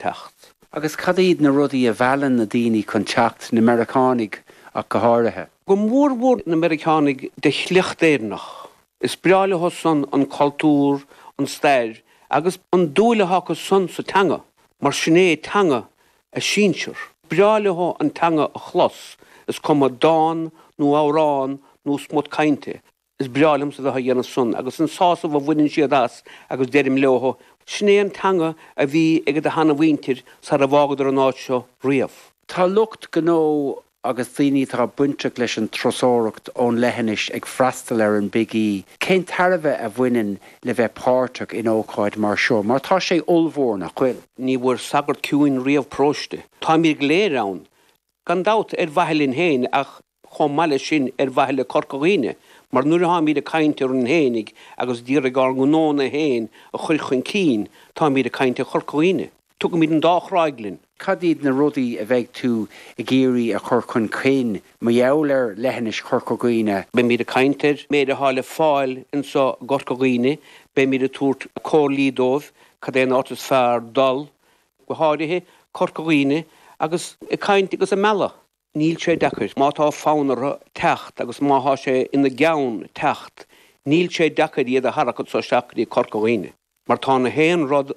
teacht. Agus cad iad na rudaí a mheallann na daoine chun teacht, na Meiriceánaigh ach go háirithe? Go mór mhór na Meiriceánaigh de shliocht Éireannach. Is breá leothu-san an cultúr, an stair agus an dul atá acu-san sa teanga, mar sin é teanga a sinsear. Is breá leothu an teanga a chlos, is cuma dán nó amhrán nó smut cainte Is breá liomsa bheith á dhéanamh san agus an sásamh a bhaineann siad as agus deirim leothu, sin é an teanga a bhí ag do sheanmhuintir sara bhfágadar an áit seo riamh. Tá lucht gnó agus daoine atá bainteach leis an turasóireacht ón leithinis ag freastal ar an Big E. Cén tairbhe a bhaineann le bheith páirteach in ócáid mar seo mar tá sé ollmhór, nach bhfuil? Ní bhfuair sagart ciúin riamh paróiste. Táimid go léir ann, gan dabht, ar mhaithe linn féin ach chomh maith leis sin ar mhaithe le Corca Dhuibhne, mar nuair a tháimid ag caint orainn fhéinig agus ag iarraidh ár ngnó féin a chur chun cinn, táimid ag caint ar Chorca Dhuibhne. Tugaimid an dá chráig linn. Cad iad na rudaí a bheidh tú ag iarraidh a chur chun cinn mar gheall ar leithinis Chorca Dhuibhne? Beimid ag caint ar an méid atá le fáil anso i gCorca Dhuibhne, beimid ag tabhairt comhairlí dóibh cad é an áit is fearr dul, go háirithe Corca Dhuibhne, agus ag caint agus ag mealladh. Níl sé deacair. Má tá fonn orthu teacht agus má thá sé ina gceann teacht, níl sé deacair iad a tharrac anso isteach go dtí Corca Dhuibhne. Mar tá na haon rud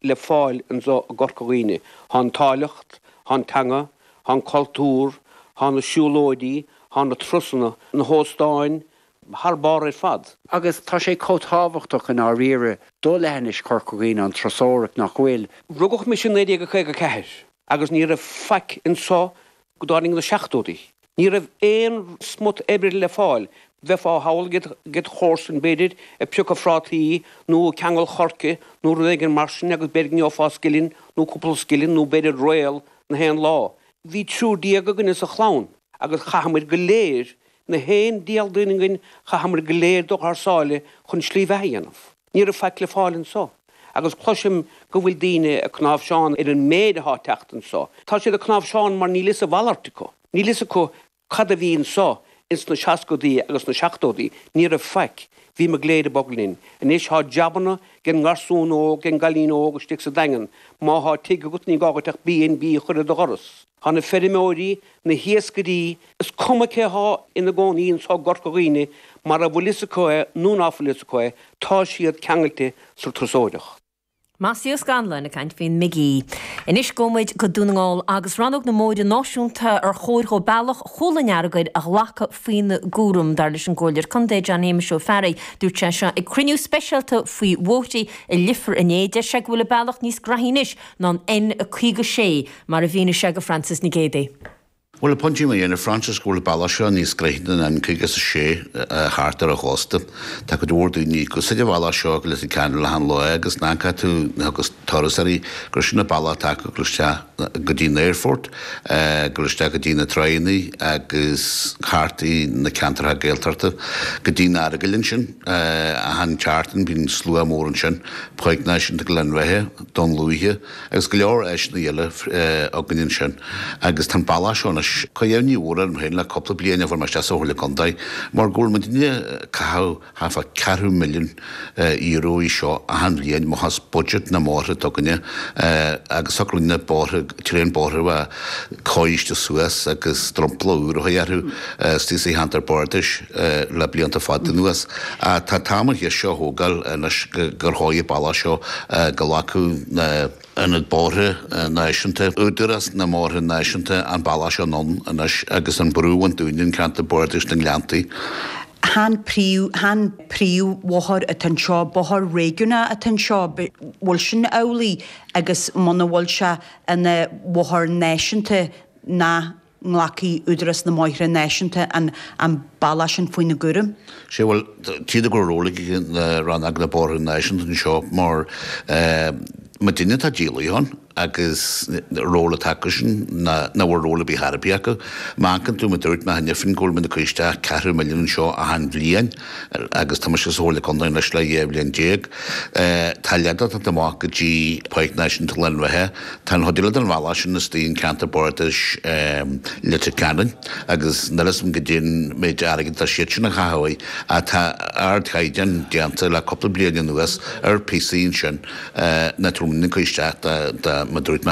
le fáil anso i gCorca Dhuibhne. Thá an áilleacht, thá an teanga, thá an cultúr, thá na siúlóidí, thá na turasanna, na hóstáin, thar barr ar fad. Agus tá sé chomh tábhachtach i ndáiríre do leithinis Chorca Dhuibhne an turasóireacht nach bhfuil? Rugadh mise i 1954. agus ní raibh faic anso go dtáinig na seachtóidí. Ní raibh aon smut oibre le fáil, bheifeá ag cabhrú led chomharsain, b'fhéidir, ag piocadh phrátaí nó ag ceangal choirce nó rud éigin mar sin agus b'fhéidir go bhfaighfeá scilling nó cúpla scilling nó b'fhéidir réal na haon lá. Bhí triúr déag againne sa chlann agus chaitheamair go léir, na haon diabhal duine againn, chaitheamair go léir dul thar sáile chun slí bheatha a dhéanamh. Ní raibh faic le fáil anso, agus cloisim go bhfuil daoine ag cnáimhseán ar an méid athá ag teacht anso. Tá siad ag cnáimhseán mar níl fhios a mhalairt acu. Níl fhios acu cad a bhí anso ins na seascaidí agus na seachtóidí. Ní raibh faic. Bhíomar go léir ag bogadh linn. Anois thá jabanna den ngarsún óg, den gcailín óg istigh sa Daingean. Má thá tigh agat ní gá dhuit ach BnB a chur ar do dhoras. Tá na feirmeoirí, na hiascairí, is cuma cé atá ina gcónaí anso i gCorca Dhuibhne, má tá fhios acu é nó ná fuil fhios acu é, tá siad ceangailte sa turasóireacht. Mossie Scanlon ag caint faoin mBig E. Anois gabhaimid go Dún na nGall agus rannóg na mbóithre náisiúnta ar chóir dó bealach chúl an Earagail a ghlacadh faoina gcúram. Dar leis an gComhairleoir Contae, John Shéamuis Ó Fearraigh, dúirt sé seo ag cruinniú speisialta faoi bhóithrí i Leifear inné, deir sé go bhfuil an bealach níos gnóthaí anois ná an N56 mar a mhínigh sé do Frances Nic Géadaigh. Bhuel, tá mé ag déanamh, Frances, go bhfuil an bealach seo níos gnoithí ná an N56 thart ar an chósta, tá cuid mhór daoine ag úsáid an bhealach seo go Leitir Ceanainn achan lá agus má amharcann tú ar thurasóirí, gur sin an bealach atá acu ag gabháil isteach go dtí an aerfort, ag gabháil isteach go dtí na tránna agus thart i na ceantracha Gaeltachta go dtí an Earagail ansin, achan tseachtain bíonn slua mór ansin, Páirc Náisiúnta Ghleann Bheithe. Dún Lúiche, agus go leor áiseanna eile againn ansin, agus tá an bealach seo anois ag cur imní mhór orm féin le cúpla bliain ó fuair mé isteach sa Chomhairle Contae, mar go bhfuil muid i ndiaidh caitheamh thart fá ceathrú milliún Euro anseo achan bhliain, amach as budget na mbóithre s'againne, agus socraíonn na bóithre, tréan bóithre a bheith cóirithe suas agus dromchla úr a chur orthu istigh sa cheantar bardais le blianta fada anuas. Tá an t-am an cheist seo a thógáil anois gur chóir an bealach seo go nglacfadh na, na Bóithre Náisiúnta, Údarás na mBóithre Náisiúnta an bealach seo anonn anois agus an brú a bhaint dúinn in ceantar bardais na nGleanntaí. Chan príomhbhóthar atá anseo, bóthar réigiúnach atá anseo, bhfuil sin amhlaidh? agus muna bhfuil sé ina bhóthar náisiúnta nach nglacfaidh Údarás na mBóithre Náisiúnta an bealach sin faoina gcúram. Sé, bhuel, tchítear go bhfuil ról ag Rannóg na mBóithre Náisiúnta anseo mar ma duine atá díolaithe ann agus ról atá acu sin nach bhfuil ról ar bith ar chor ar bith acu. Má amharcann tú mar a dúirt mé cheana féin go bhfuil muid ag cur isteach ceathrú milliún anseo achan bhliain, agus tá mise sa Chomhairle Contae anois le dhá bhliain déag. Tá leid á tabhairt amach go dtí Páirc Náisiúnta Ghleann Bheithe. Tá an chuid eile den bhealach sin istigh in Ceantar Bardais Leitir Ceanainn agus níl 'fhios a'm goidé an méid airgead atá siad sin a chaitheamh ach tá ardchaighdeán déanta le cúpla bliain anuas ar phíosaí ansin ná tá muid in ann cur isteach de, de, mar dúirt mé.